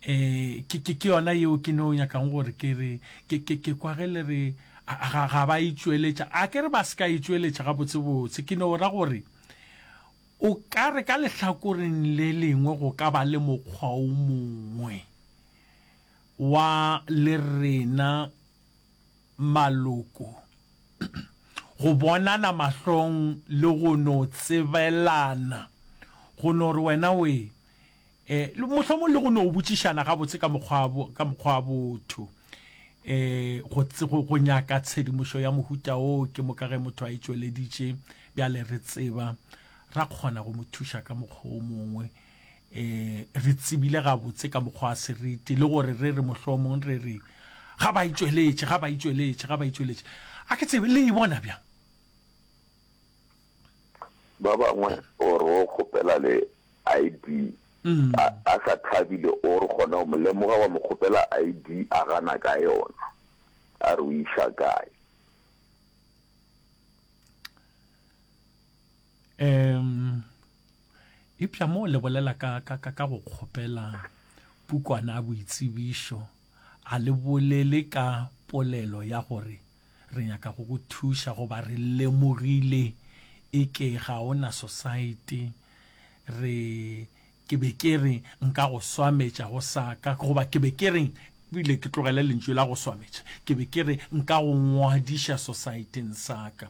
eh ke ke ke yona yeo ke no nyakang gore ke re ke ke ke kwa ge le re ga ga ba itšweletša a ke re ba se ka itšweletša ga botse botse ke no ra gore o ka re ka lehlakoreng le lengwe go ka ba le mokgwa o mongwe wa le rena maloko go bonana mahlong le go no tsebelana go no re wena we Ee, mohlomong le go no botšišana gabotse ka mokgwa ka mokgwa wa botho. Ee, go go nyaka tshedimošo ya mohuta o ke moka ge motho a e tšweleditše bjale re tseba ra kgona go mo thuša ka mokgwa o mongwe. Ee, re tsebile gabotse ka mokgwa wa seriti le gore re re mohlomong re re ga ba e tšweletše, ga ba e tšweletše, ga ba e tšweletše. A ke tsebe le e bona bjang? Ba bangwe o re o kgopela le ID a sa thabile o re gona o mo lemoga wa mo kgopela ID a gana ka yona a re o iša kae. Um Eupša mo o lebolela ka ka ka ka go kgopela pukwana ya boitsebišo a le bolele ka polelo ya gore Re nyaka go go thuša goba re lemogile e ke ga o na sosaete. Re, ke be ke re nka go swametša go sa ka, goba ke be ke re, bile ke tlogele lentšu la go swametša, ke be ke re nka go ngwadiša sosaeteng sa ka.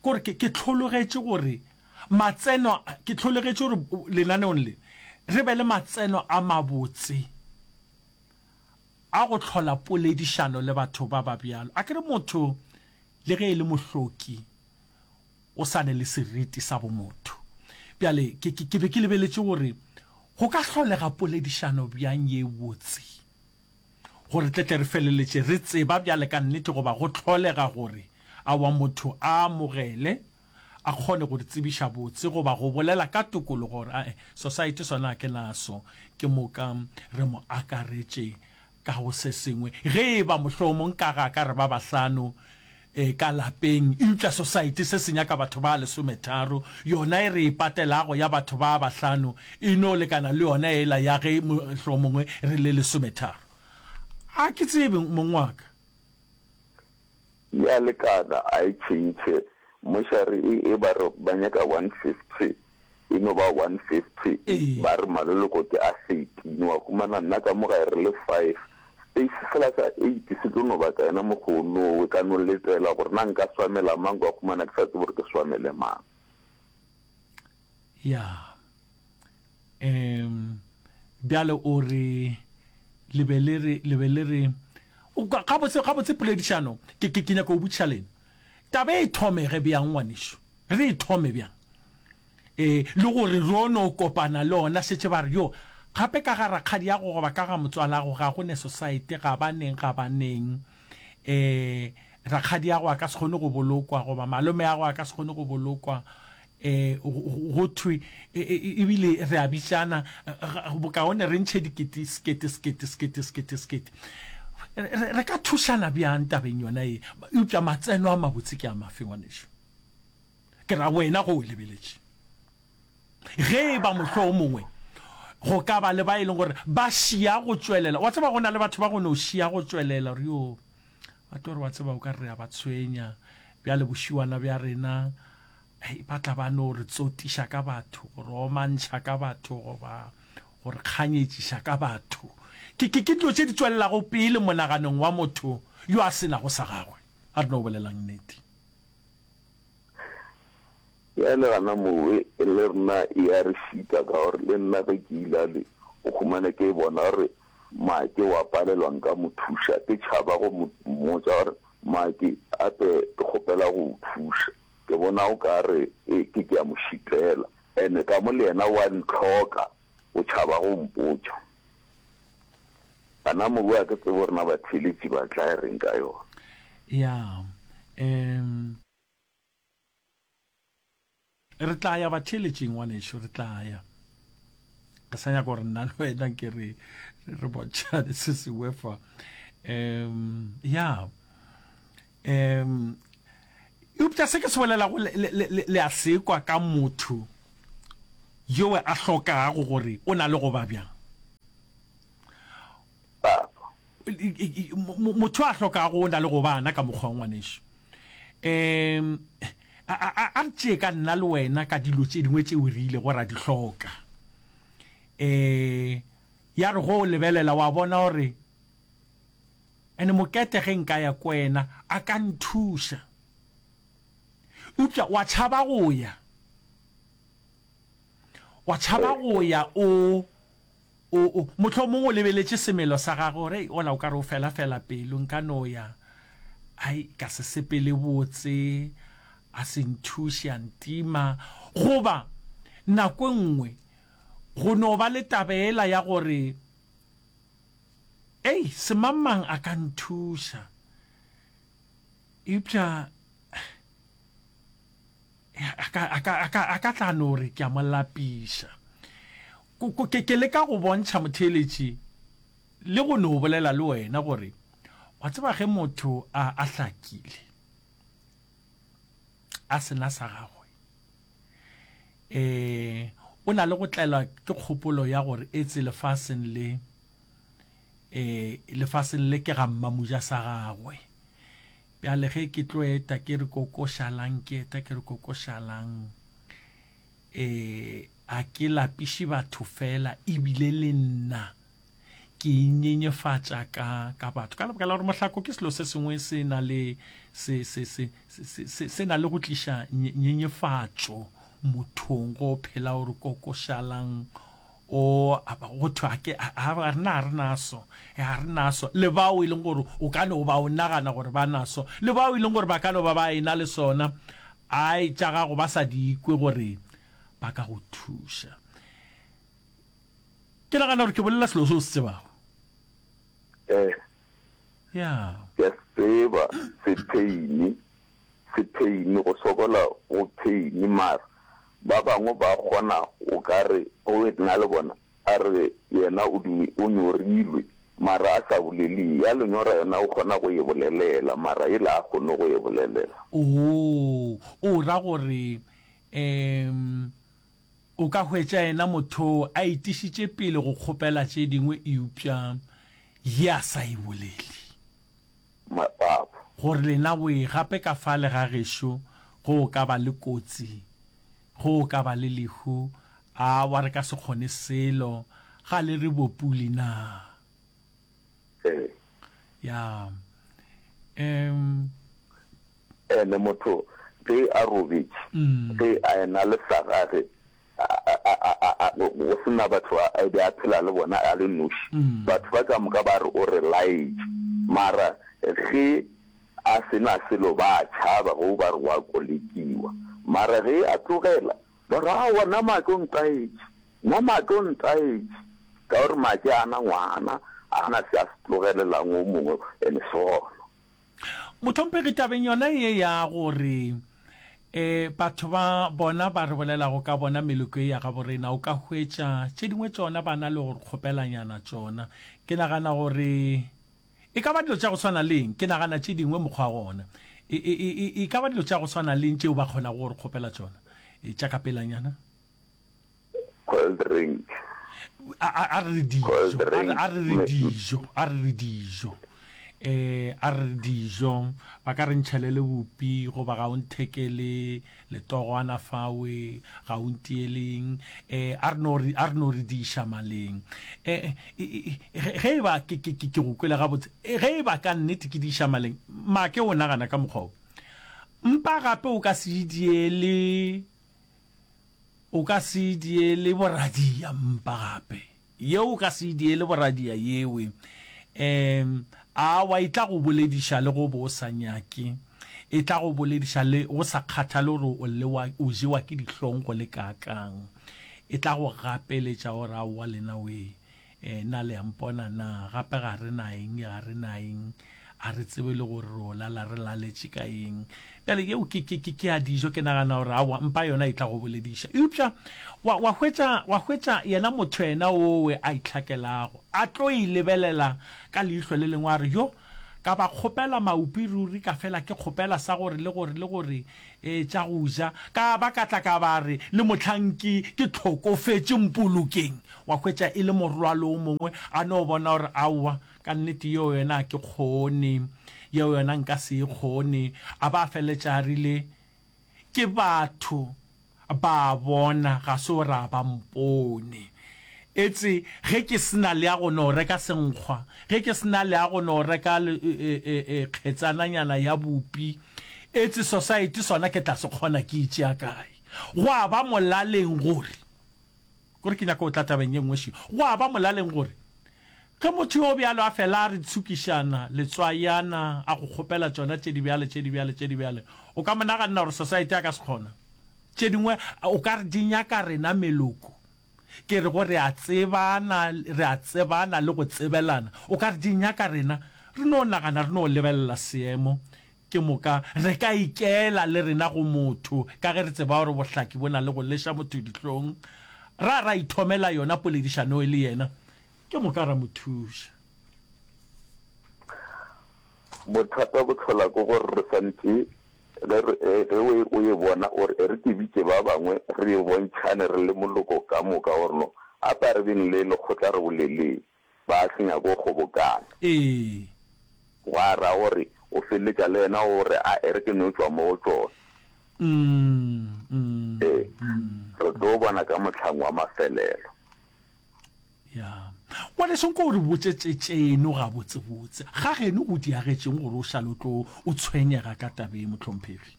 Kore ke, ke hlologetše gore matseno, ke hlologetše gore lenaneong le re be le matseno a mabotse A go hlola poledišano le batho ba ba bjalo. Akere motho le ge e le mohloki o sa ne le seriti sa bomotho. Bjale ke, ke, ke be ke lebeletše gore go ka hlolega poledišano bjang ye botse gore tle tle re feleletše re tseba bjale ka nnete goba go hlolega gore awa motho a amogele a kgone go re tsebiša botse goba go bolela ka tokologo gore ae society sona ga ke naso ke moka re mo akaretše ka go se sengwe ge e ba mohlomong ka ga ka re ba bahlano e ka lapeng eupša society se se nyaka batho ba lesometharo yona e re e patelago ya batho ba bahlano e no lekana le yona ela ya ge mohlomongwe re le lesometharo a ke tsebe mongwaka E a lekana a e tšhentšhe. Mošari e e ba re ba nyaka one fifty e no ba one fifty ba re maloloko ke a thirteen wa humana nna ka mo gae re le five space sela sa eight se tlo no batla yena mokgoonowe ka no letela gore na nka swamela mang kwa humana ke sa tsebe gore ke swamele mang. Ya. Ehm, bjale o re, le be le re, le be le re, O kwa, gabotse, gabotse poledišano, ke, ke, ke nyaka go botšiša lena. Taba e thomege bjang, ngwanešu? Re e thome bjang? E, le gore ro no kopana le ona, šetše ba re, yo, gape ka ga rakgadiago goba ka ga motswalago, ga go ne Sosaete, ga ba neng, ga ba neng. E, rakgadiago a ka se kgone go bolokwa, goba malomeago a ka se kgone go bolokwa. E, go thwe, e, e, e, ebile re a bitšana bokaone, re ntšhe dikete, sekete, sekete, sekete, sekete, sekete. Re, re ka thušana bjang tabeng yona e? Eupša matseno a mabotse ke a mafe, ngwanešu? Ke ra wena go o lebeletše. Ge e ba mohlwo o mongwe, go ka ba le ba e leng gore ba šia go tšwelela. Wa tseba, go na le batho ba go no šia go tšwelela, gore yo, ba tlo re, wa tseba, o ka re re a ba tshwenya, bjale bošiwana bja rena, Hei, ba tla ba no re tsotiša ka batho, go re omantšha ka batho, goba go re kganyetšiša ka batho. Ke, ke, ke dilo tše di tšwelelago pele monaganong wa motho yo a se nago sa gagwe. A re no bolelang nnete. Ya le gana moo, e, e le rena e a re šita, ka gore le nna ge ke ila le go humana ke bona gore Maki wa palelwa nka mo thuša, ke tšhaba go mo mmotša gore, Maki, gape ke kgopela go o thuša. Ke bona o ka re e ke ke a mo šitela. Ene ka mo le yena o a ntlhoka, o tšhaba go mpotša. Bana mohu a ke tsebe gore na batheeletši ba tla e reng ka yona. Ya, um. Re tla ya batheeletšing, ngwanešu, re tla ya. Re sa nyaka gore nna le wena ke re re bontšhane se sengwe fa. Um, ya. Umm. Eupša se ke se bolelago le, le, le, le, le a se kwa ka motho yowe a hlokago gore o na le go ba bjang. Babo. Mo, motho a hlokago o na le go ba na ka mokgwa wa ngwanešu. Umm. A, a, a, a re tšee ka nna le wena ka dilo tše dingwe tšeo re ile go ra di hloka. Ee, ya re go o lebelela wa bona gore. And Mokete ge nka ya ko yena a ka nthuša. Eupša wa tšhaba go ya. Wa tšhaba go ya o, o, o, mohlomong o lebeletše semelo sa gagwe gore, Hei, ola o ka re o fela-fela pelo, nka no ya, ai, ka se sepele botse, a se nthuše, a ntima. Goba, nako e nngwe, go no ba le taba ela ya gore Ei, se mang-mang a ka nthuša. Eupša a ka, a ka, a ka, a ka tla no re ke a mo lapiša. Ko, ko, ke, ke leka go bontšha motheeletši le go no bolela le wena gore, wa tseba ge motho a, a hlakile, a se na sa gagwe, e o na le go tlaelwa ke kgopolo ya gore etse lefaseng le e lefaseng le ke ga mmamuja sa gagwe bjale ge ke tlo eta ke re kokošalang ke eta ke re kokošalang e a ke lapiše batho fela ebile le nna ke inyenyefatša ka ka batho ka lebaka la gore mohlako ke selo se sengwe se na le se se se se se na le go tliša nyenyefatšo mothong go phela gore kokošalang o go thwe a ke a re na re naso a re naso le bao e leng gore o ka no ba o nagana gore ba naso le bao e leng gore ba ka no ba ba ena le sona ai tša gago ba sa di ikwe gore ba ka go thuša Ke nagana gore ke bolela selo se o se tsebago. Ee. Ya. Ke a se tseba, sepeini. Sepeini, go sokola go peini. Mara ba bangwe ba kgona o ka re o e na le bona, a re yena o di, o nyorilwe mara a sa bolele. Ya lenyora yona o kgona go e bolelela mara yela a kgone go e bolelela. Oo, o ra gore, um. O ka hwetša yena mothoo a itišitše pele go kgopela tše dingwe eupša ye a sa e boleli. Mapapu. Gore lena boye gape ka fale ga gešo, go ka ba le kotsi, go ka ba le lehu, awa re ka se kgone selo, ga le re bopuli naa? ee ya um ene motho ge a robetše mm. ge a ena le sa gage go sena batho a be a phela le bona a le noši mm. batho ba ka moka ba re o re laetše mara ge a sena selo ba tšhaba go ba re wa kolekiwa mara ge a tlogela Morago wa Namake o ntaetše, Namake o ntaetše, ka gore Make a na ngwana, a na se a se tlogelelang wo mongwe ene sono. Mohlomphegi, tabeng yona ye ya gore e batho ba bona ba re bolelago ka bona meloko ye ya gabo rena, o ka hwetša tše dingwe tšona ba na le go re kgopelanyana tšona. Ke nagana gore E ka ba dilo tša go swana le eng? Ke nagana tše dingwe mokgwa gona. E, e, e, e, e ka ba dilo tša go swana le eng tšeo ba kgonago go re kgopela tšona? E, tša ka pelanyana. Cold drink. A, a, a re re dijo. Cold A re, drink. a re re Me- dijo. A re re dijo. E, a re re dijo. Ba ka re ntšhelele bupi, goba ga o nthekele Letogwana fawe ga o ntieleng e a re no re a re no re diša maleng e ge e ba ke ke ke go kwele ga botse ge e ba ka nnete ke diša maleng make o nagana ka mokgwa o mpa gape o ka se diele o ka se diele boradia mpa gape Yeo o ka se e diele boradia yewe. Ehm, awa e tla go bolediša le go bo o sa nyake. E tla go bolediša le go sa kgathale gore o lewa, o jewa ke dihlong go le kaakang. E tla go gapeletša gore aowa lenawee, eh, na le a mpona na, gape ga re na eng, ga re na eng. a re tsebe le gore re o lala re laletše ka eng bjale yeo ke, ke, ke, ke a dijo ke nagana gore awa mpa yona e tla go bolediša eupša wa, wa, hwetša, wa hwetša yena motho yena owe a itlhakelago a tlo e lebelela ka leihlo le lengwe a re yo ka ba kgopela maupi ruri ka fela ke kgopela sa gore le gore le gore e tša go ja ka ba ka tla ka ba re le mohlang ke ke tlhokofetše mpolokeng wa hwetša e le morwalo o mongwe a no bona gore aowa Ka nnete yeo yona a ke kgone, yeo yona nka se e kgone. A ba a feleletša a rile, Ke batho, ba a bona, ga se gore a ba mpone. Etse ge ke se na le ya go no reka senkgwa, ge ke se na le ya go no reka kgetsananyana ya bupi, etse Society sona ke tla se kgona ke e tšea kae? Gwa ba molaleng gore. Gore ke nyaka go tla tabeng ye nngwe še. Gwa ba molaleng gore ge motho yo bjalo a fela a re tshukišana, letswayana, a go kgopela tšona tše di bjale, tše di bjale, tše di bjale, o ka mo naganna gore Society a ka se kgona. Tše dingwe o ka re di nyaka rena meloko. Ke re go re a tsebana, re a tsebana le go tsebelana. O ka re di nyaka rena re no nagana, re no lebelela seemo Ke moka re ka ikela le rena go motho ka ge re tseba gore bohlaki bo na le go leša motho dihlong, ra ra ithomela yona poledišanoe le yena, ke moka ra mo thuša. Bothata bo hlola ke gore re swantše ge re e ge o e o e bona o re e re ke bitše ba bangwe re e bontšhane re le moloko ka moka gore no a ba re beng le lekgotla re boleleng. ba se nyake go kgobokana. Ee. Gwa ra gore o feleletša le yena o re, A e re ke no tšwa mo go tšona. Ee, re tlo bona ka mohlang wa mafelelo. Ya. Ngwaneso, nko o re botše tše tšeno gabotsebotse. Ga geno o diagetšeng gore o šale o tlo o tshwenyega ka taba ye, mohlomphegi?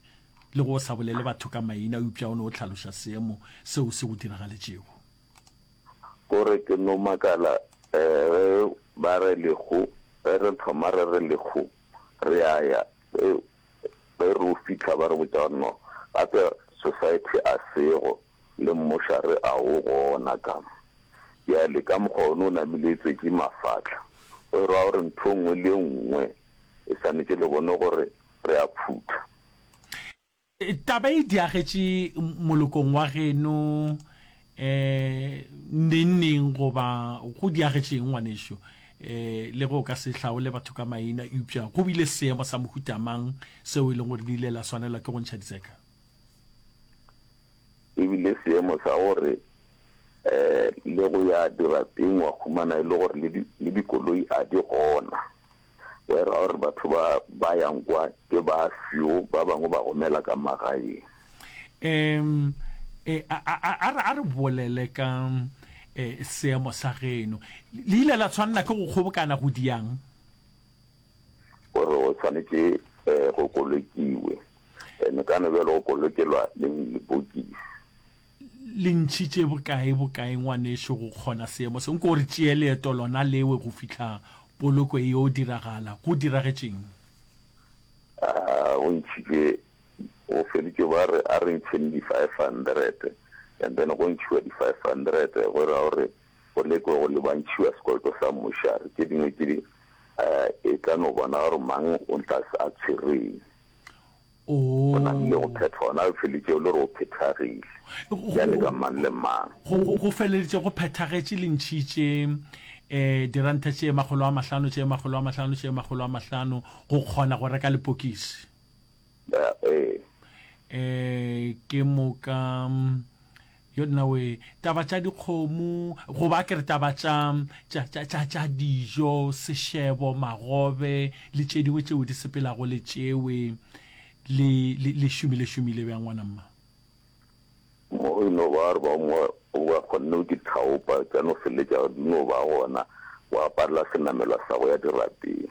Le ge o sa bolele batho ka maina, eupša o ne o hlaloša seemo seo se go diragaletšego. Ko re ke no makala ge ba re Lekgo, ge re thoma re re Lekgo re ya ya, ge ge re o fihla ba re botša gore no gape Society a sego, le mmuša re a o gona ka. Bjale ka mokgwa one o namile etšwetše mafahla, go e rwa gore ntho e nngwe le e nngwe e swanetše le bone gore re a phutha. Taba e diagetše molokong wa geno um nengneng goba go diagetše eng ngwanešu? um Le ge o ka se hlaole batho ka maina, eupša go bile seemo sa mohuta mang seo e leng gore le ile la swanelwa ke go ntšha ditseka? E bile seemo sa gore um le go ya dirapeng wa humana e le gore le dikoloi a di gona. Where or batho ba ba yang kwa ke ba few ba bangwe ba romela ka magaeng. Em, e, a, a, a, a re- a re bolele ka e, seemo sa geno. Le- Le ile la tshwanela ke go kgobokana go diang? Gore o tshwanetse eh, go kolokiwe. And ka no bjalo go kolokelwa leng lebokisi. le ntšhitše bokae bokae ngwanešu go kgona seemo se nko re tšee leeto lona lewe go fihla poloko e yo diragala go diragetšeng go ntšhitše go feditše ba re a re ntšheng di five hundred and then go ntšhiwa di five hundred go ra gore go lekwe go le ba ntšhiwa sekoloto sa mmušari tše dingwe tše di e tla no bona gore mang o tla a tshwereng Go rile go phethwa gona go feletšego le gore go phethagile. Bjale ka mang le mang? Go feleletše go phethagetše lentšhi tše diranta tše makgolo a mahlano, tše makgolo a mahlano, tše makgolo a mahlano, go kgona go reka lepokisi. Ee. Ke moka Yo nnawe taba tša dikgomo goba a ke re taba tša tša tša tša tša dijo sešebo magobe le tše dingwe tšeo di sepelago le tšewe le le le šomile šomile bjang ngwana mma. Mo e no ba gore ba mo o ba kgonne go di thaopa tša no feletša di no ba gona go aparela senamelwa sa go ya dirapeng.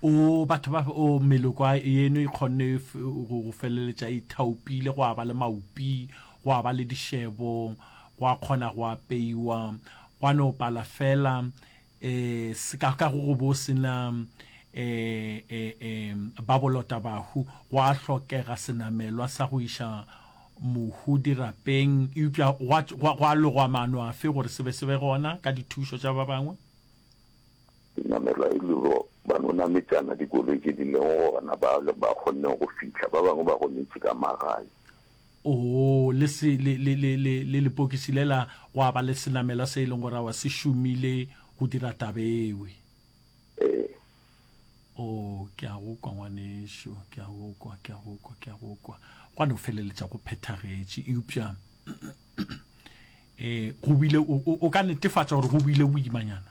O batho ba o meloko a yeno e kgonne go go feleletša e thaopile go a ba le maupi Gwa ba le dišebo, gwa kgona go apeiwa, gwa no pala fela, e, seka ka go go bo se na, e, e, e, ba bolota bahu. Gwa hlokega senamelwa sa go iša mohu dirapeng, eupša gwa, gwa, gwa logwa maano afe gore se be se be gona ka dithušo tša ba bangwe? Senamelwa e le go ba no nametšana dikoloi tše di lego gona, ba, ba kgonne go fihla, ba bangwe ba gonetše ka magae. Oo, le se, le, le, le, le, le lepokisi lela, gwa ba le senamelwa se e leng gore awa se šomile go dira taba ewe. Ee. Oo, ke a go kwa, ngwanešu, ke a go kwa, ke a go kwa, ke a go kwa. Gwa no feleletša go phethagetše, eupša ee, go bile, o, o, o ka netefatša gore go bile boimanyana.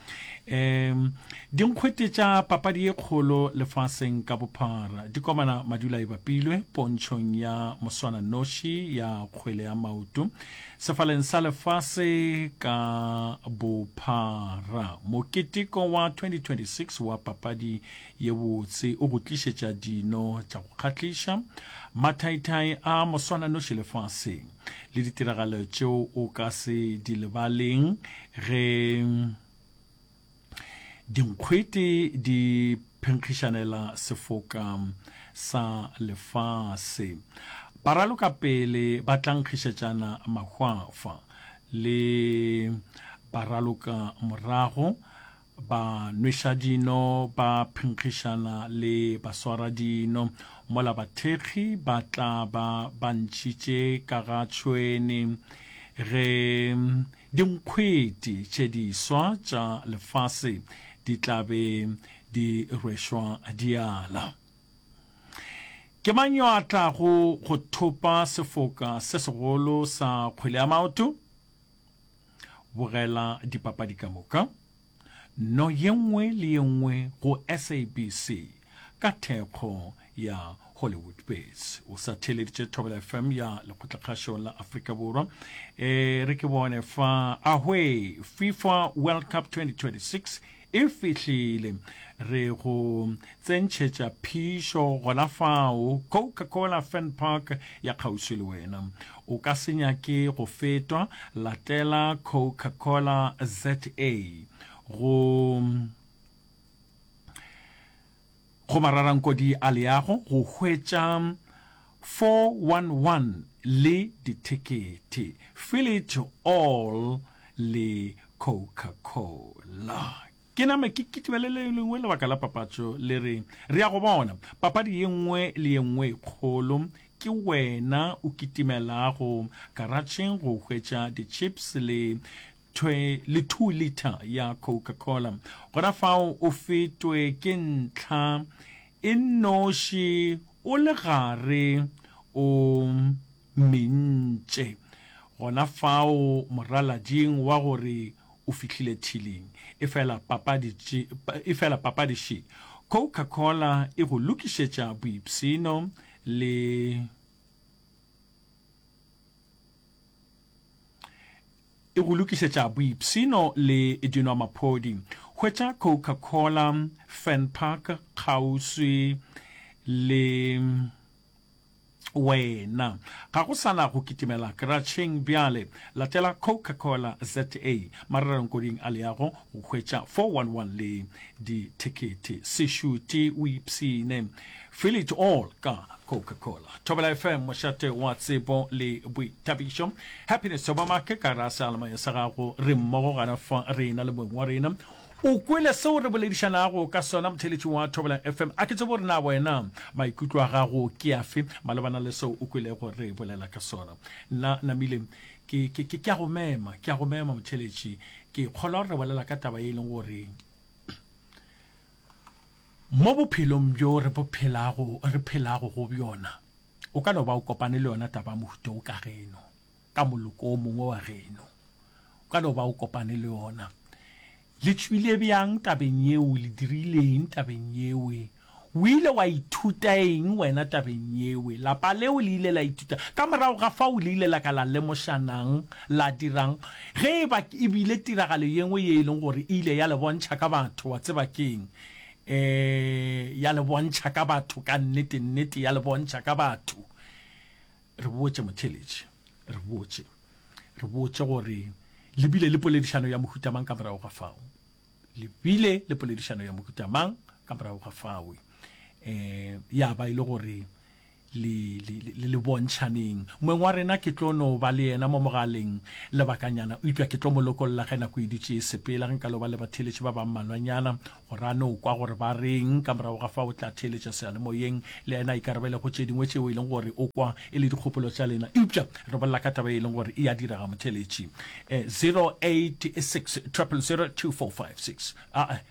um dinkgwete tša papadi ye kgolo lefaseng ka bophara di komana madula e bapilwe pontšhong ya moswana noši ya kgwele ya maoto sefaleng sa lefase ka bophara moketeko wa 2026 wa papadi ye botse o go tlišetša dino tša go kgahliša mathaithai a moswana noši lefaseng le ditiragalo tšeo o ka se di lebaleng ge dinkgwete di phenkgišanela sefoka sa lefase ba raloka pele ba tlankgišetšana mahwafa le ba raloka morago Banwešadino ba phenkgišana le baswaradino, mola bathekgi ba tla ba ba ntšhitše ka ga tšhwene ge dinkgwete tše diswa tša lefase di tla be di rwešwa diala. Ke mang yo a tlago go thopa sefoka se segolo sa kgwele ya maoto? Bogela dipapadi ka moka, no ye nngwe le ye nngwe go SABC ka thekgo ya Hollywoodbets. O sa theeleditše Thobela FM ya Lekgotlakgašo la Afrika Borwa. E re ke bone fa, ahwee, FIFA World Cup 2026 E fihlile. Re go tsentšhetša phišo gona fao, Coca-Cola Fan Park ya kgauswi le wena. O ka se nyake go fetwa, latela Coca-Cola ZA go go mararankodi a leago go hwetša 411 le dithekete, Fill It All le Coca-Cola. Ke name ke kitibele le lengwe lebaka la papatšo le re, Re a go bona, papadi ye nngwe le ye nngwe e kgolo, ke wena o kitimelago karatšheng go hwetša di-chips le thwe le two liter ya coca cola gona fao o fetwe ke ntlha e nnoši o le gare o mentše gona fao moralading wa gore o fihlile thiling efela papadi efela papadi še coca cola e go lokišetša boipsino le e go lokišetša boipshino le dinwamaphodi. Hwetša Coca-Cola, Fernpark kgauswi le wena. Ga go sa na go kitimela Kratšheng bjale. Latela Coca-Cola ZA marerengkoding a leago go hwetša 411 le dithekete. Se šute o ipshine Feel it all ka Coca-Cola. Thobela FM mošate wa tsebo le boithabišo. Happiness Thobamake ka ra sealemanya sa gago re mmogo gana fa rena le moeng wa rena. O kwele seo re boledišanago ka sona motheletši wa Thobela FM. A ke tsebo re na wena maikutlo a gago ke afe malebana le seo o kwelego re bolela ka sona. Nna Namile ke ke ke ke a go mema, ke a go mema motheletši. Ke kgolwa re bolela ka taba e leng gore Mo bophelong bjo re bo phelago, re phelago go bjona, o ka no ba o kopane le yona taba ya mohuta wo ka geno, ka moloko wo mongwe wa geno. O ka no ba o kopane le yona. Le tšwile bjang tabeng yeo? Le dirile eng tabeng yeo? O ile wa ithuta eng wena tabeng yeo? Lapa leo le ile la ithuta, ka morago ga fao le ile la ka la lemošanang, la dirang? Ge e ba e bile tiragalo ye nngwe ye e leng gore e ile ya le bontšha ka batho, wa tseba ke'ng? Ee, ya le bontšha ka batho, ka nnete, nnete, ya le bontšha ka batho. Re botše motheeletši, re botše, re botše gore le bile le poledišano ya mohuta mang ka morago ga fao? Le bile le poledišano ya mohuta mang ka morago ga fao? Ee, ya ba e le gore le, le, le, le bontšhaneng. Moeng wa rena ke tlo no ba le yena mo mogaleng lebakanyana, eupša ke tlo mo lokolla ge nako e dutše e sepela. Ge nka lo ba le batheeletši ba ba mmalwanyana, gore a no kwa gore ba reng, ka morago ga fao o tla theeletša seyalemoyeng, le yena a ikarabele go tše dingwe tšeo e leng gore o kwa e le dikgopolo tša lena. Eupša re bolela ka taba ye e leng gore e a direga, motheeletši. Eh, 086 000 2456. A-a.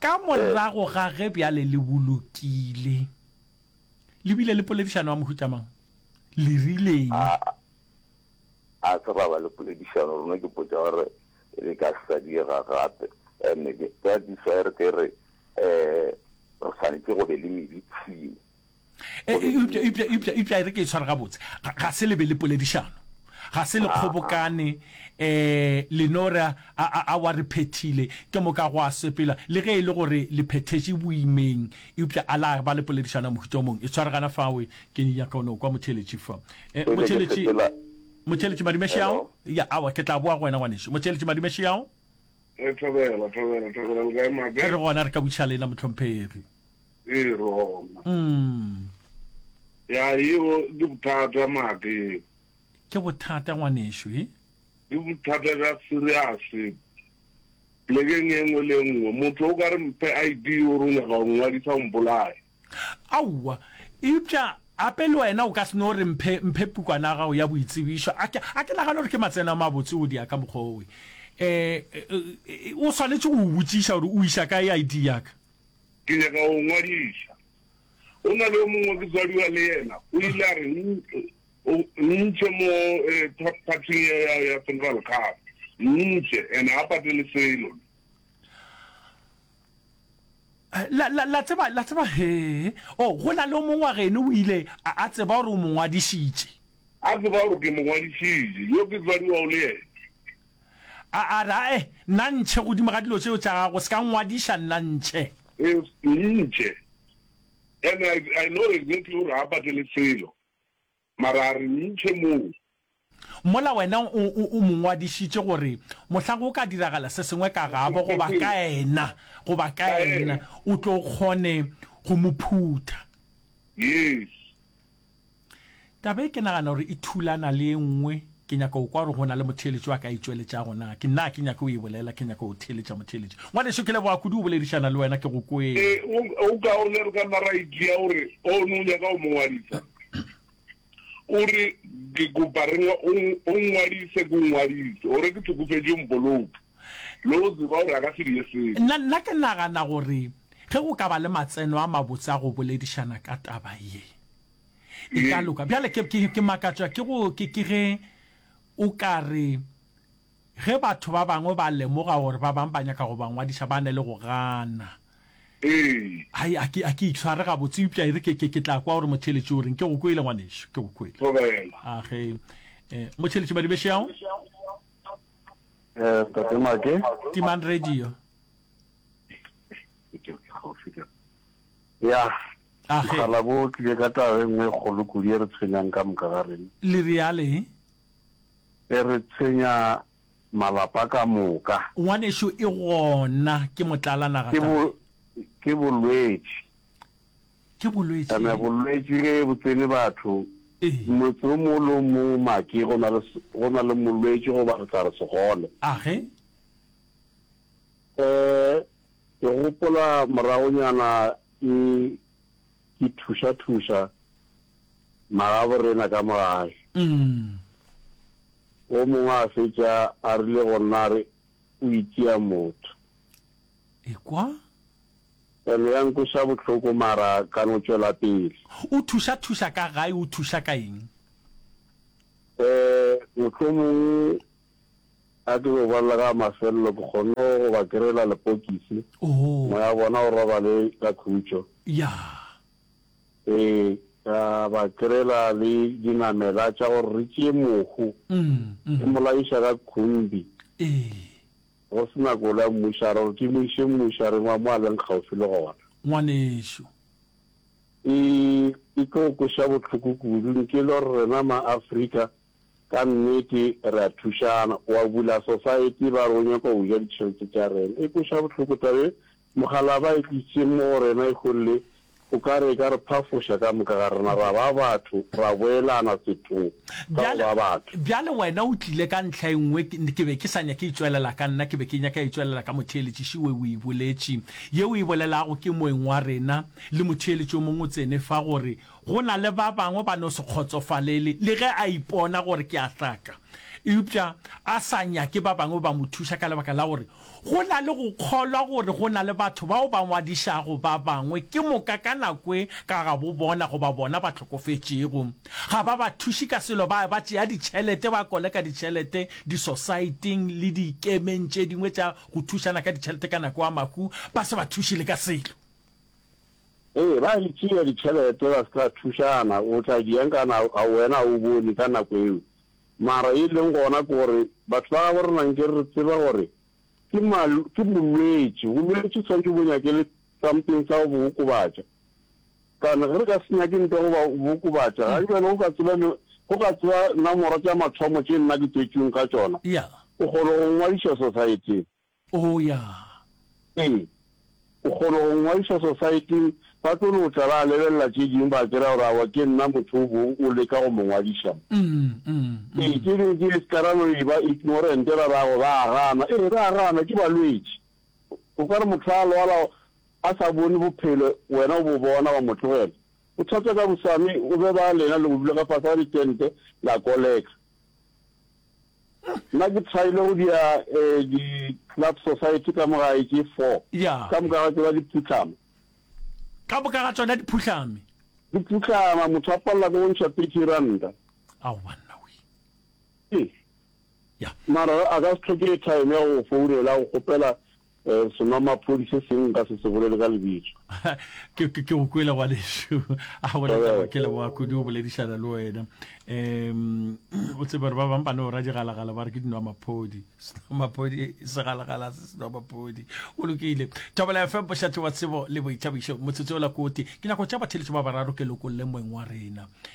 Ka morago ga ge bjale le bolokile, le bile le poledišano ya mohuta mang? Le rileng? A, a se ra ba le poledišano. Rena ke potša gore re ka se sa diega gape. And that is why re ke re re swanetše go be le medicine. eupša e re ke e tshware gabotse ga se lebe le poledišano ga se le kgobokane eh lenora a wa re phethile ke moka go a sepela le ge e le gore le phethetše boimeng eupša a la ba le poledišana mohuta mong e tshware gana fawe ke ni nyaka ono kwa motheletši fa eh, motheletši motheletši madimeše yao ya awa ke tla boa go wena ngwaneše motheletši madimeše yao eh, thobela thobela thobela le ka mabe re gona re ka butša lena motlhomphegi Ee, Roma. Mm. Ya, yeo ke bothata maake. Ke bothata ngwanešu, e? Ke bothata ka seriase. Plekeng e nngwe le e nngwe, motho o ka re mphe ID o re o nyaka go ngwadisa o mpolaye. Aowa, eupša gape le wena o ka se no re mphe, mphe pukwana ya gago ya boitsebišo. A ke, a ke nagane gore ke matseno a mabotse go dia ka mokgwa owe. Eh, eh, eh, o swanetše go o botšiša gore o iša kae ID ya ka. Ke nyaka go ngwadiša. Go na le yo mongwe ke tswadiwa le yena, o ile a re, Nntšhe mo phathing ya ya Central Cup. Nntšhe, and ga patele selo. La, la, la tseba, la tseba, he, oh, go na le yo mongwe wa geno o ile a, a tseba gore o mo ngwadišitše. A tseba gore ke mo ngwadišitše, yo ke tswadiwago le yena. A a re, Ae, nna ntšhe godimo ga dilo tšeo tša gago, o se ka nngwadiša nna ntšhe. Yes, ntšhe. And I, I know exactly gore ga a patele selo, mara a re ntšhe moo. Mola wena o, o, o mo ngwadišitše gore mohla go ka diragala se sengwe ka gabo goba ka ena, goba ka ena, o tlo kgone go mo phutha. Yes. Taba e ke nagana gore e thulana le e nngwe, ke nyaka go kwa gore go na le motheeletši wa ka a e tšweletšago. Na ke nna a ke nyake go e bolela? Ke nyaka go theeletša motheeletši. Ngwaneso, ke leboga kudu go boledišana le wena. Ke go kwele. Ee, go go kaone re ka nna ra e tšea gore o ne o nyaka go mo ngwadisa. O re, Ke kopa re o o ngwadise, ke o ngwadise, gore ke hlokofetše o mpoloke. le go tseba gore a ka se dire selo. Nna, nna ke nagana gore ge go ka ba le matseno a mabotse a go boledišana ka taba ye, e ka loka. Bjale ke, ke, ke makatšwa ke go, ke, ke ge o ka re, ge batho ba bangwe ba lemoga gore ba bangwe ba nyaka go ba ngwadiša, ba ne le go gana. Ee. Hai, a ke, a ke itshware gabotse, eupša e re ke, ke, ke tla kwa gore motheeletši o reng. Ke go kwele, ngwanešu, ke go kwele. Thobela. A ge, eh, motheeletši Madibeshau? Eh, Ntate Make. Timang radio. Ya. Ah, Mogala bo tlile ka taba e nngwe kgolo kudu e re tshwenyang ka moka ga reng. Le reale. E re tshwenya malapa ka moka. Ngwanešu e gona ke motlalanaga. Ke bo ke bolwetši. Ke bolwetši. Eme bolwetši ge bo tsene batho, motse o mongwe le o mongwe make go na le, go na le molwetši goba re tla re segole. A ge? Eh, ke gopola moragonyana ke, ke thuša-thuša magaborena ka mo gae. Umm. O mongwe a fetša a rile go nna a re, O itšea motho. Ekwa. Pelo ya nkweša bohloko mara ka no tšwela pele. O thuša thuša ka gae o thuša ka eng? Eh, mohlomongwe ga ke no bolela ka mafelelo ke kgonne go ba kry-ela lepokisi, Oh. moya wa bona o robale ka khutšo. Yeah. Eh, ka ba kry-ela le dinamela tša gore re tšee mohu, Mm, re mm. mo layiša ka khumbi. Eh. Go se na kolo ya mmušo, a re gore ke mo iše mmušo, a reng wa mo a leng kgauswi le gona. Ngwanešu. E, e tlo o kweša bohloko kudu, nke le gore rena ma-Afrika ka nnete re a thušana. Wa bula society ba re o nyaka go ja ditšhelete tša rena. E kweša bohloko taba ye, Mokgalaba e tlišitše mo go rena e golle, o ka re e ka re phafoša ka moka ga rena ra ba batho, ra boelana sethong sa go ba batho. Bjale wena o tlile ka ntlha e nngwe, ke be ke sa nyake itšwelela ka nna, ke be ke nyaka itšwelela ka motheeletši še we o e boletše. Ye o e bolelago ke moeng wa rena, le motheeletši yo mongwe o tsene fa, gore go na le ba bangwe ba no se kgotsofalele le ge a ipona gore ke a hlaka, eupša a sa nyake ba bangwe ba mo thuša ka lebaka la gore Go na le go kgolwa gore go na le batho bao ba ngwadišago ba bangwe ke moka ka nako e ka ga bo bona goba bona ba hlokofetšego. Ga ba ba thuše ka selo, ba eba tšea ditšhelete, ba koleka ditšhelete disosaeteng le dikemeng tše dingwe tša go thušana ka ditšhelete ka nako ya mahu, ba se ba thuše le ka selo. Ee, ba di tšea ditšhelete ba se tla thušana, o tla di enka na, a wena ga o bone ka nako eo Mara ye leng gona ke gore batho ba gabo rena nke re tseba gore ke ke bolwetši, bolwetši swantše bo nyake le something sa go bo okobatša. Kana ge re ka se nyake nto go ba bokobatša ga jalo go ka tseba le go ka tseba namoro tša mathomo tše nna ke tswetšweng ka tšona. O kgona go ngwadiša society Oo, ya. Ee. O kgona go nngwadiša Sosaeting, ba tlo no tla ba lebelela tše dingwe, ba kera gore awa ke nna motho o bong o leka go mo ngwadiša mo. Ee, tše dingwe tše di ka ra no eba ignorant, ra ra go ba a gana. Ee, ba a gana, ke balwetši. O ka re motho a lwala a sa bone bophelo, wena o bo bona, wa mo tlogela. Bothata ka bosame, o be ba lena le go dula ka fase ga ditente, la koleka. Nna ke tryile go dia eh, di club society ka mo gae ke four. Ya. Ka moka ga tseba di phutlhama. Ka moka ga tsona di phuhlame. Di phutlhama motho a palela go ntšha thirty ranta. Ao banna we. Eh. Ya. Mara a ka se tlhoke time ya go founela go kgopela Senwamaphodi se seng nka se se bolele ka lebitso. Ke ke go kwele ngwanešu a bolela gore ke leboa kudu o boledišana le wena um o tsebe gore ba bang ba ne o ra digalagala ba re ke dinwamaphodi senwamaphodi segalagala se senwamaphodi o lokile thobela fm bošathi wa tsebo le boithabišo motsotso o la kote dinako tša batheletšo ba bararo ke lokolle moeng wa rena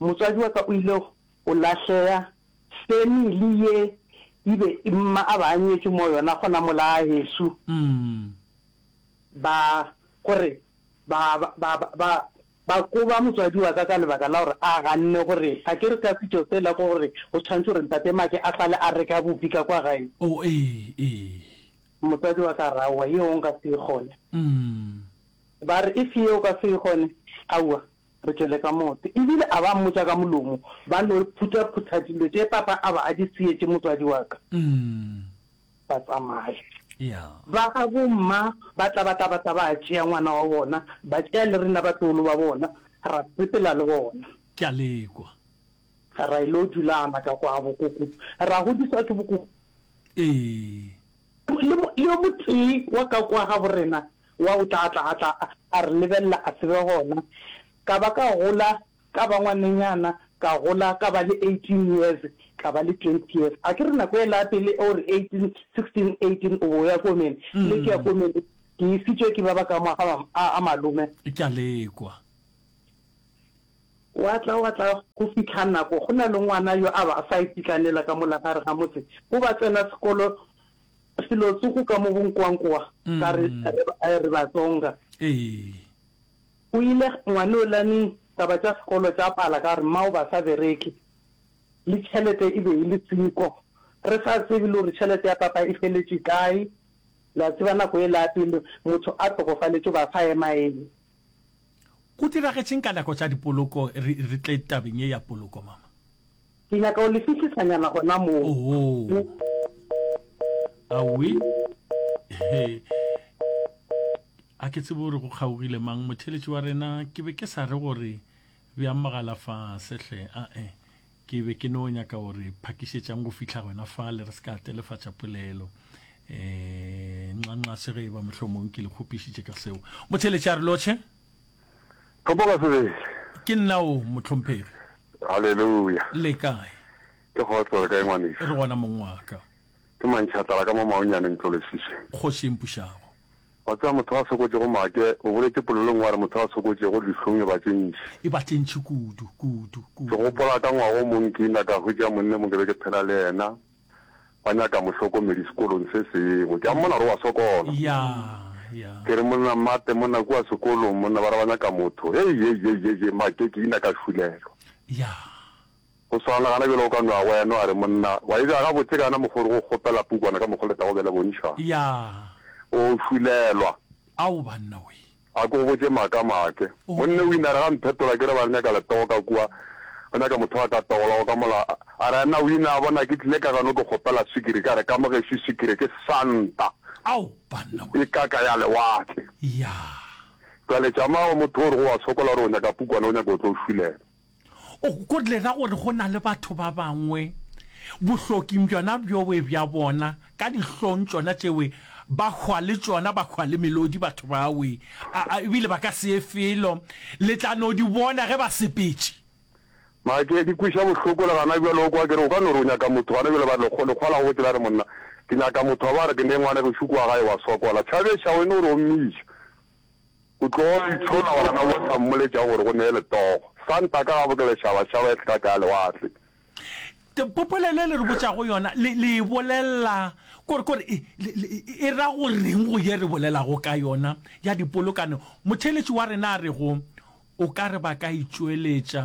Motswadi wa ka o ile go lahlea, family ye e be mma a ba a nyetše mo yona gona mola gageso, ba gore ba ba ba ba koba motswadi wa ka ka lebaka la gore a ganne gore a ke re ka setšo sela ko gore go tshwanetse gore ntate Make a sale a reka bupi ka kwa gae. Oh ee ee. Motswadi wa ka a re aowa yeo nka se e kgone. Ba re if yeo o ka se e kgone aowa re tšwele ka motse. E bile a ba mmotša ka molomo, Ba no phuthaphutha dilo tše papa a ba a di seyetše motswadi wa ka, ba tsamaya. Ba gabo mma ba tla ba tla ba tla ba tšea ngwana wa bona, ba tšea le rena batloolo ba bona, ra sepela le bona. Ke a lekwa. Ra e lo dula gana ka kwa bokoko, ra godiswa ke bokoko. Ee. Le yo motee wa ka kwa gabo rena. Wa o tla a tla a tla a re lebelela a se be gona. Ka ba ka gola ka ba ngwanenyana, ka gola ka ba le eighteen years, ka ba le twenty years. A ke re nako ela ya pele o re eighteen, sixteen, eighteen o bo o ya komeng, le ke ya komeng le ke isitswe ke ba ba ka moga a a malome. Ke a lekwa. Wa tla wa tla go fitlha nako go na le ngwana yo a ba a sa ititlanela ka mola gare ga motse, go ba tsena sekolo, Selo se go ka mo go nkwankwa ka re re re Batsonga. Go ile ngwane o lane taba tša sekolo tša pala ka gore mmao ba sa bereke le tšhelete e be e le seko. Re sa tsebe le gore tšhelete ya papa e feletše kae. Le a tseba nako e la pele motho a hlokofaletše ba sa ema eme. Go diragetšeng ka nako tša dipoloko re re tle tabeng ye ya poloko mama? Ke nyaka o le fihlisanyana gona moo. Oho. Awi. He. A ke tsebe gore go kgaogile mang motheletši wa rena ke be ke sa re gore bjang mogala fa sehle a e ke be ke no nyaka gore phakišetšang go fihla gona fa le re se ka telefatša polelo eh nxanxa se ge e ba mohlomong ke le kgopišitše ka seo motheletši a re lotšhe Gopola sebele. Ke nna o, mohlomphegi. Haleluya! Le kae? Ke kgotse. O re kae, ngwanešu? Re gona, mong wa ka. Ke mantšhatlala ka mo maonyaneng, tlolesise. Kgoši e mpušago. Wa tseba, motho a sokotšego make, o boletše polelong, wa re, motho a sokotšego dihlong e ba tše ntši. E ba tše ntši kudu, kudu, kudu. Ke gopola ka ngwaga o mong ke ina ka hwetša monna mo ke be ke phela le yena. ba nyaka mohlokomedi sekolong se sengwe. Ke a mmona gore o a sokola. Ya, ya. Ke re, Monna Mate, monna kua sekolong, monna, ba re ba nyaka motho. Hei, hei, hei, hei, hei, Make, ke ina ka šulelwa. Ya. Go swana le gana bjale o ka no a wena, no a re, Monna, wa e bja gabotse kana mokgwa o re go kgopela pukwana ka mokgwa o le tla go bela bontšhwa? Ya. O šulelwa. Ao, banna wee! A ke go botše maaka maake. Monne o inare ga mphetola ke re ba re nyaka letoo ka kua, ba nyaka motho wa ka togola go ka mola. A re na o ina bona ke tlile ka gano ke kgopela swikiri, ka re ka mo gešo swikiri ke santa, Ao banna we. Ke kaka ya lewatle. Yaa. Jwale tšamago motho o re go wa sokola o re o nyaka pukwana o nyaka o tlo o šulela. O lela gore go na le batho ba bangwe bohloking bjona bjowe bja bona ka dihlong tšona tšewe ba hwa le tšona, ba hwa le melodi batho bawe, a, a, ebile ba ka se ye felo. Le tla no di bona ge ba sepetše. Mara ke, ke kweša bohloko le gana bjale. O kwa ke re, o ka no re o nyaka motho gana bjale, ba re lekgo, lekgwa la gobotse la re, Monna, ke nyaka motho wa ba re ke ne ngwanegešu kua gae wa swa kwala. Tšhabešago e no re omiša. O tlo itshona gona o sa mmoletša gore go neye letogo. Santa ka gabo ke lešabašaba e hlaka ya lewatle. Popole le le re botšago yona le le e bolelela kore kore e e ra go reng go ye re bolelago ka yona ya dipolokano? Motheeletši wa rena a re go o ka re ba ka itšweletša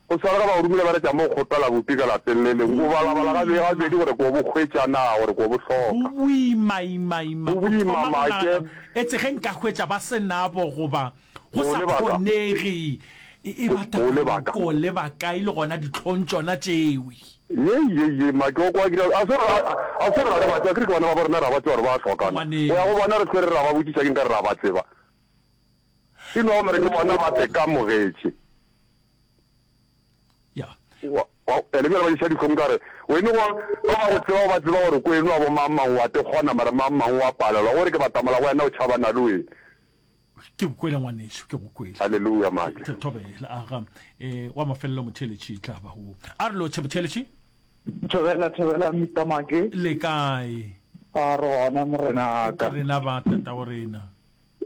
Go swana ka ba o romile ba re tša mo kgopela bopi ka lapeng le leng, o balabala gabedi gabedi gore ke o bo hwetša naa, gore ke o bo hloka. Go boima ima ima go thoma go nagana etse ge nka hwetša ba se nabo goba go sa kgonege, e ba tabaneng ke o leba kae le gona dihlong tšona tšeo. Yei yei yei make o kwa ke realo, a se gore a se gore ga re ba tsebe, akere ke bana ba bo rena re a ba tseba gore ba a hlokana, go ya go bona re hlwe re re ra ba botšiša ke nka re re a ba tseba. E no gore ke bona ba se ka mogetše. E le bjale ba diša dihlong ka re, o e no gore ba ba go tseba ba tseba gore ko e no a bo mang mang wa te kgona mara mang mang wa palelwa gore ke batamala go wena o tšhabana le wena. Ke go kwele ngwaneso, ke go kwele. Hallelujah mate. Ke thobela a ga e wa mafelelo motheletši tla ba go. A re lo tšhe motheletši. Thobela thobela mitamake. Le kae? A re gona morenaka. Rena ba tata o rena.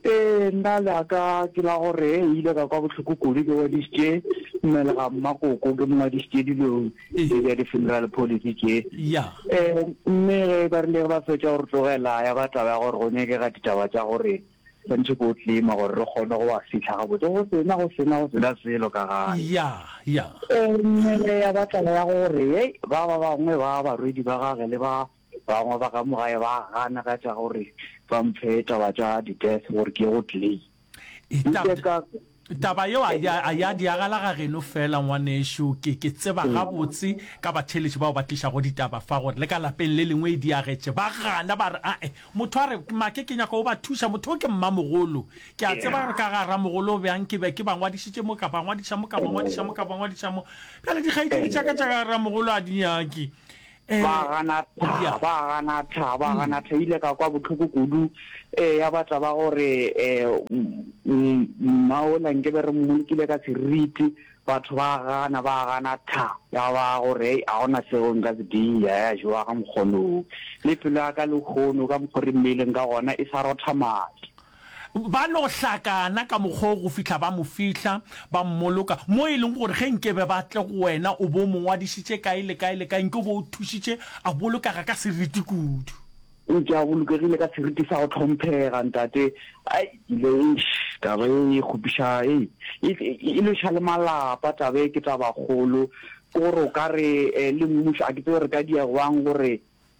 Ee, nna le a ka ke la gore e ile ka kwa bohloko kudu ke wedišitše mmele ga mmakoko ke mongwadišitše dilo tše bja di-funeral policy tše um mme ge ba rile ba fetša gore tlogela ya ba taba ya gore go nyakega ditaba tša gore santšhe ko tlima gore re kgone go wa fitlha gabotse go sena go sena go sena selo ka gane mme ya ba taba ya gore e ba ba bangwe ba barwedi ba gage le ba Bangwe ba ka mogae ba gana ka tša gore ba mphe taba tša di-death gore ke ye go claim. E, tab, Nke ka taba yeo a ya, a ya diagala ga geno fela ngwanešu ke, ke tseba Mm. gabotse ka batheeletši bao ba tlišago ditaba fa gore le ka lapeng le lengwe e diagetše ba gana ba re ae motho a re make ke nyaka o ba thuša motho o ke mmamogolo ke a tseba gore ka ga ramogolo o bjang ke be ke ba ngwadišitše mo ka ba ngwadiša mo ka ba ngwadiša mo ka ba ngwadiša mo bjale dikgaetšedi tša ka tša ga ramogolo a di nyake ba gana tha ba gana tha ba gana tha ile ka kwa botlhoko kudu eh ya ba taba gore eh maola nke be re mmolokile ka seriti batho ba gana ba gana tha ya ba gore a gona seo nka se dia ya jowa ga mokgono le pelo ya ka le hono ka mokgori mmeileng ka gona e sa rotha madi Ba no hlakana ka mokgwa wo go fihla ba mo fihla, ba mmoloka, mo e lego gore ge nke be ba tle go wena o bo o mo ngwadišitše kae le kae le kae, nke o bo o thušitše a bolokega ka seriti kudu. Eupša a bolokegile ka seriti sa go hlomphega, ntate. Ai, ke ile, eish, taba ye e kgopiša, ei, e, e lweša le malapa. Taba ye ke tabakgolo. Ke gore o ka re, le mmušo, a ke tsebe re ka diegwang gore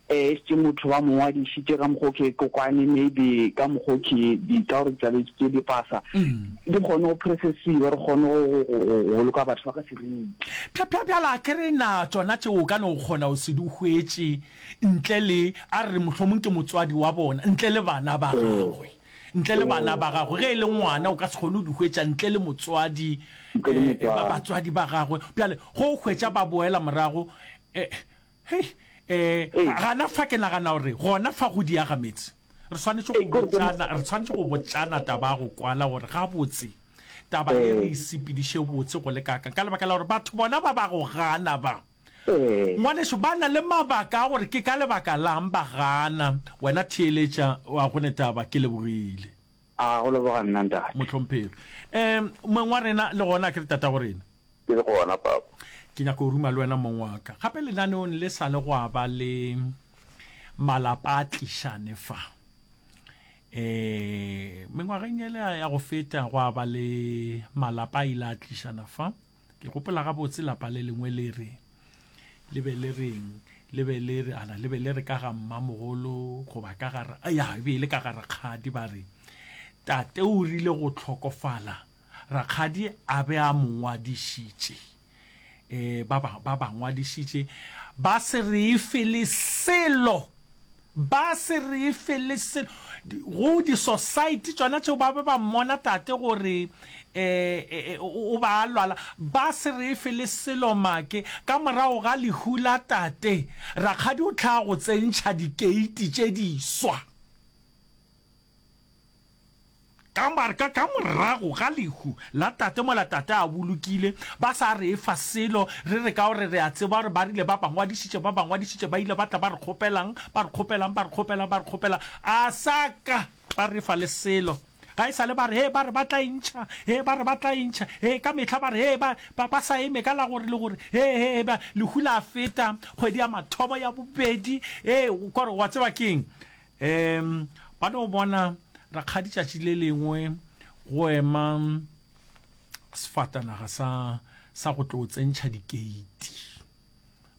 Ee, ešitše motho ba mo ngwadišitše ka mokgwa o ke kokwane, maybe ka mokgwa o ke di ka gore tlabe ke di pasa, di kgone go processiwa, re kgone go go- go- go boloka batho ba ka seriti. Bja- bja- bjala a ke re na tsona tšeo o ka no kgona go se di hwetše ntle le a re mohlomong ke motswadi wa bona ntle le bana ba gagwe ntle le bana ba gagwe ge e le ngwana o ka se kgone go di hwetša ntle le motswadi Ntle le eh, ba- motswadi. batswadi ba gagwe bjale go hwetša ba boela morago eh, Hei, ee, Ee. gana fa ke nagana gore gona fa go diaga meetse re swanetše go Ee, ke re ke botšana, re swanetše go botšana taba ya go kwala gore gabotse taba e re Ee. e sepediše botse go le kaakang ka lebaka la gore batho bona ba ba go gana ba Ee. ngwaneso ba na le mabaka a gore ke ka lebaka lang ba gana wena theeletša wa gone taba ke lebogile. A go leboga nna, Ntate. Mohlomphegi. Ee, moeng wa rena, le gona, akere tatago rena? Ke le gona, Papa. Ke nyaka go ruma le wena, moeng wa ka. Gape lenaneong le sa le gwa ba le malapa a tlišane fa. Ee, mengwageng ele ya go feta, gwa ba le malapa a ile a tlišana fa. Ke gopola gabotse lapa le lengwe le re le be le reng le be le re ala le be le re ka ga mmamogolo goba ka ga ya e be e le ka ga rakgadi ba re tate o rile go tlhokofala rakgadi a be a mo ngwadišitše um ba ba ngwadišitše ba se re efe le selo Ba se re fe le selo. Go di society tšona tšeo ba be ba mmona tate gore o ba a lwala, ba se re fe le selo make. Ka morago ga lehu la tate, rakgadi o hlaa go tsentšha dikeiti tše diswa. Ka marka ka morago ga lehu la tate mola tate a bolokile, ba sa re efa selo, re re ka gore re a tseba gore ba rile ba ba ngwadišitše, ba ba ngwadišitše, ba ile ba tla ba re kgopelang, ba re kgopelang, ba re kgopelang, ba re kgopelang, a sa ka ba re fa le selo. Ga e sa le ba re, hee, ba re ba tla e ntšha, hee, ba re ba tla e ntšha, hee, ka mehla ba re, hee, ba, ba, ba sa eme ka la gore le gore, hee, hee, hee, ba, lehu la feta, kgwedi ya mathomo, ya bobedi, hee, kore wa tseba ke eng, Eem, ba no bona rakgadi tšatši le lengwe go ema sefatanaga sa sa go tlo tsentšha dikeiti.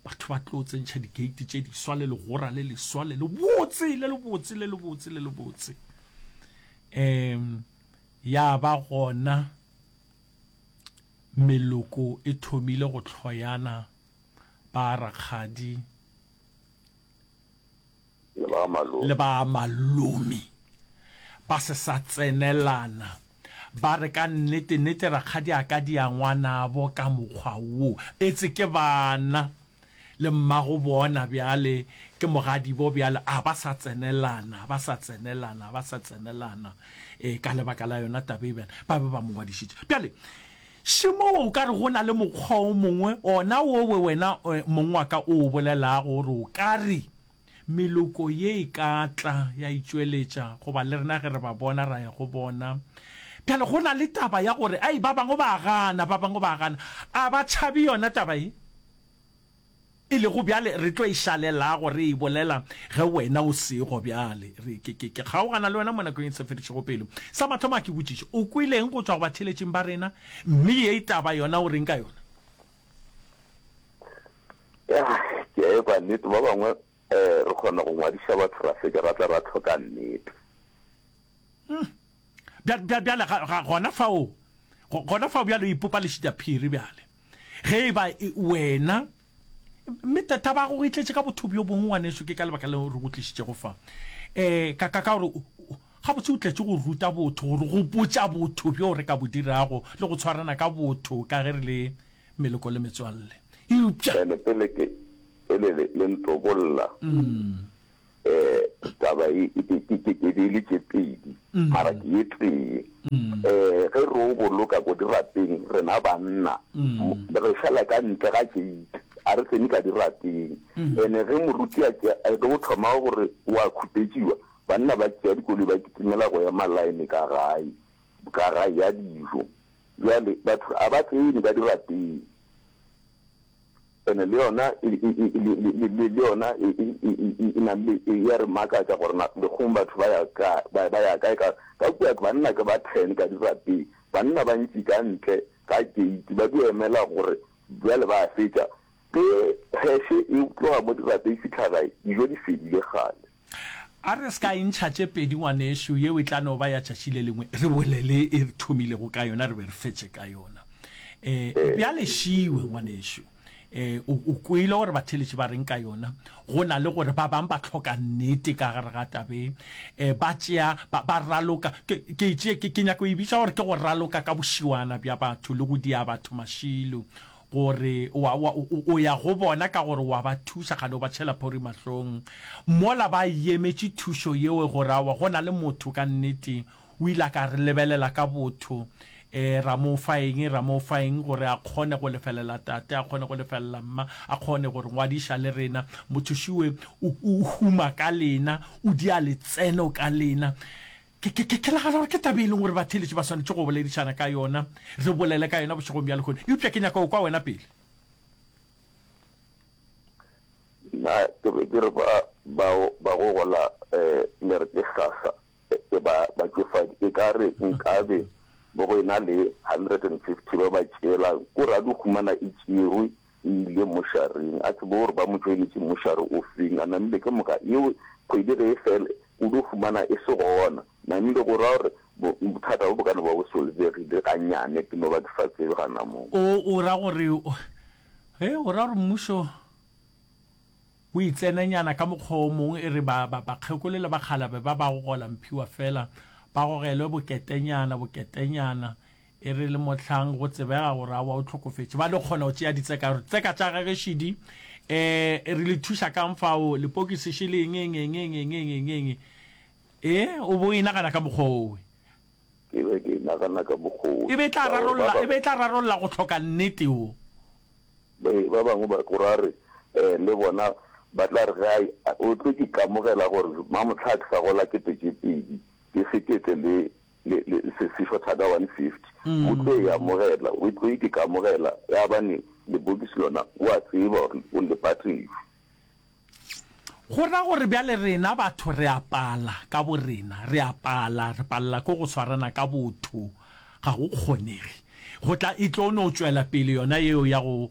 Batho ba tlo tsentšha dikeiti tše di swa le legora le leswa le le botse le le botse le le botse le le botse. Eem, ya ba gona meloko e thomile go tlhoyana ba rakgadi le ba malome. Le ba malome ba se sa tsenelana, ba re, Ka nnete, nnete, rakgadi a ka dia ngwanabo ka mokgwa wo. Etse ke bana, le mmago bona bjale ke mogadibo bjale. A ba sa tsenelana, ba sa tsenelana, ba sa tsenelana. Ee, ka lebaka la yona taba e bjale, ba be ba mo ngwadišitše. Bjale, šemo o ka re go na le mokgwa o mongwe, ona wo we wena mong wa ka o o bolelago, gore o ka re, Meloko ye e ka tla ya itšweletša goba le rena ge re ba bona ra ya go bona. Bjale go na le taba ya gore ai ba bangwe ba a gana, ba bangwe ba a gana. A ba tšhabe yona taba ye? E lego bjale re tlo e šalelago re e bolela ge wena o sego bjale. Re, ke, ke, ke kgaogana le wena mo nakong e se fedišego pelo. Sa mathomo a ke botšiše, o kwele eng go tšwa go batheeletšing ba rena, mme ye taba yona o reng ka yona? Ya, ke a ekwa nnete. Ba bangwe um re kgona go ngwadiša batho ra fetša ra tla ra tlhoka nnete. Uhm. Bja, bja, bjale ga, ga gona fao, go, gona fao bjale o ipopa lešitaphiri bjale. Ge e ba e, wena, mme ta, taba ya gago e tletše ka botho bjo bongwe, ngwanešu, ke ka lebaka leo re go tlišitšego fa. Um, ka, ka, ka gore o, o, gabotse o tletše go ruta botho, go re gopotša botho bjo re ka bo dirago le go tshwarana ka botho ka ge re le meloko le metswalle. Eupša. Bjale, pele ke, pele le, le ntobolla, um taba e, ke, ke, ke, ke di le tše pedi, mara ke ye tee. Um ge re o boloka ko dirapeng, rena banna, re fela ka ntle ga keiti, a re tsene ka dirapeng. Ene ge moruti a tšea, a tlo go thoma gore o a khupetšiwa, banna ba tšea dikoloi ba kitimela go ema line ka gae, ka gae ya dijo. Bjale, batho ga ba tsene ka dirapeng, and le yona e, e, e, le, le, le, le, le yona e, e, e, e, e, e na le, e, ya re makatša gore na legong batho ba ya ka, ba, ba ya kae, ka, ka kua banna ke ba ten ka dirapeng, banna ba ntši ka ntle ga keiti ba dio emela gore bjale ba fetša, ge pheshe e tloga mo dirapeng e fitlha gae, dijo di fedile kgale. A re se ka e ntšha tše pedi ngwanešu, yeo e tla no ba ya tšatši le lengwe, re bole le e re thomilego ka yona re be re fetše ka yona. Um bjale šiwe ngwanešu, um o, o kwele gore batheletši ba reng ka yona, go na le gore ba bang ba hloka nnete ka gare ga tabe, um ba tšea, ba, ba raloka, ke, ke, ke, ke nyaka go e bitša gore ke go raloka ka bošiwana bja batho le go dia batho mašilo. gore wa, wa, o, o ya go bona ka gore wa ba thuša, kgale o ba tšhela phori mahlong. Mola ba yemetše thušo yeo, gore awa, go na le motho ka nnete. O ile a ka re lebelela ka botho. E, ra mo fa eng, ra mo fa eng, gore a kgone go lefelela tate, a kgone go lefelela mma, a kgone go re ngwadiša le rena. Motho šiwe o, o huma ka lena, o dia letseno ka lena. Ke, ke, ke, ke nagana gore ke taba e leng gore batheeletši ba swanetše go boledišana ka yona, re bolele ka yona bošegong bja lehono. Eupša ke nyaka go kwa wena pele. Nna ke be ke re ba, bao ba go gola um le re ke sasa, e, ba, batšofadi, e ka re nkabe bo go ena le hundred and fifty ba ba tšeelang kura di humana e tšerwe, e ile mošareng, a tsebe gore ba mo tšoeletše mošare o feng, a namile ke moka yeo kgwedi ge e fele o dio fumana e se gona, namile go ra gore bothata bo bo ka no ba bo solvegile ga nyane ke no ba ke sa tsebe ga na mo. O o ra gore ge o ra gore mmušo o itsenenyana ka mokgwa o mong e re ba ba bakgekolo le bakgalabe ba ba go gola mphiwa fela ba gogelwe boketenyana boketenyana E re le mohlang go tsebega gore a wa o tlhokofetše ba le kgona go tšea ditseka gore tseka tša gage šidi um re le thuša kang fao lepokisi še le engengengengengengengeng e o bo e nagana ka mokgwa owe ke be ke nagana ka mokgwa e be e tla rarolla e be e tla rarolla go tlhoka nnete o ba bangwe ba go ra re um le bona ba tla re ga o tle ke kamogela gore mamotlha a ke sa gola ketekepedi ke sekete le le, le, se, se fo thata 150. O tlo e amogela, o tlo iteka amogela, ya bane lebokisi lona o a tseba gore o le patetse. Go ra gore bjale rena batho re a pala ka borena, re a pala, re palela ke go swarana ka botho, ga go kgonege. Go tla, e tlo no tšwela pele yona yeo ya go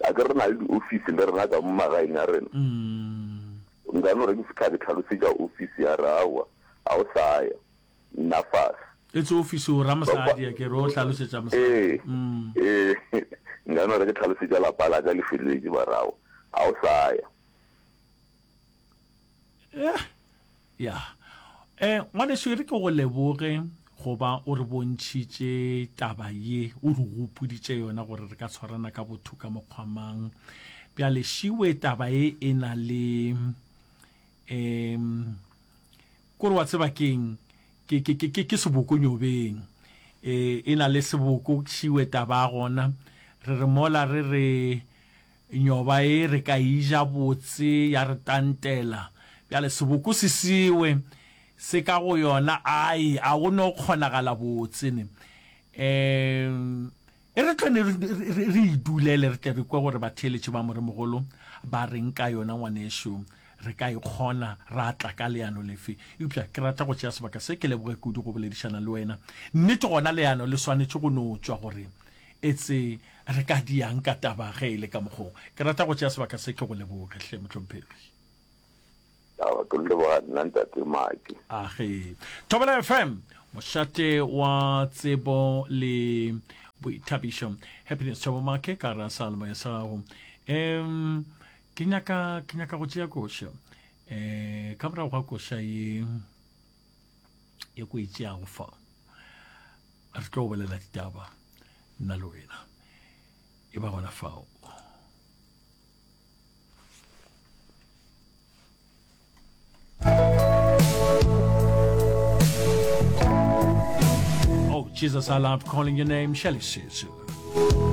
A ke re na le diofisi le rena ka mo magaeng a rena? Nka no re ke fitla ke tlhalosetša ofisi ya re aowa, ga o sa ya, nna fase. E tse ofisi o ra mosadi a ke re o hlalosetša mosadi. Ee, ee, nka no re ke tlhalosetša lapa la ka le felwetše ba re aowa, ga o sa ya. yeah ya um ngwaneso e re ke go leboge goba o re bontšhitše taba ye o re gopoditše yona gore re ka tshwarana ka botho ka mokgwamang bjale šiwe taba e e na le um kore wa tseba keng ke, ke, ke, ke, ke seboko nyobeng e, e na le seboko šiwe taba gona re re mola re re Nyoba e re ka e ja botse ya re tantela. Bjale seboko se sewe se ka go yona, Ai, a go no kgonagala botse ne. Um E re tlone re idulele re tle re kwe gore batheeletši ba Moremogolo ba reng ka yona, ngwanešu. Re ka e kgona ra tla ka leano lefe? Eupša ke rata go tšea sebaka se ke leboge kudu go boledišana le wena. Nnete gona leano le swanetše go no tšwa gore Etse re ka diang ka taba ge e le ka mokgong? Ke rata go tšea sebaka se ke go leboge, hle mohlomphegi. Aowa, ke leboga nna Ntate Maki. A ge Thobela FM, mošate wa tsebo le boithabišo. Happiness Thabo Make ka ra sa lemoya sa gago. Em, ke nyaka, ke nyaka go tšea koša. Eh, ka morago ga koša ye. e ko e tšeago fa re tlo bolela ditaba nna le wena e ba gona fao Oh, Jesus, I love calling your name, Shelly Sisu.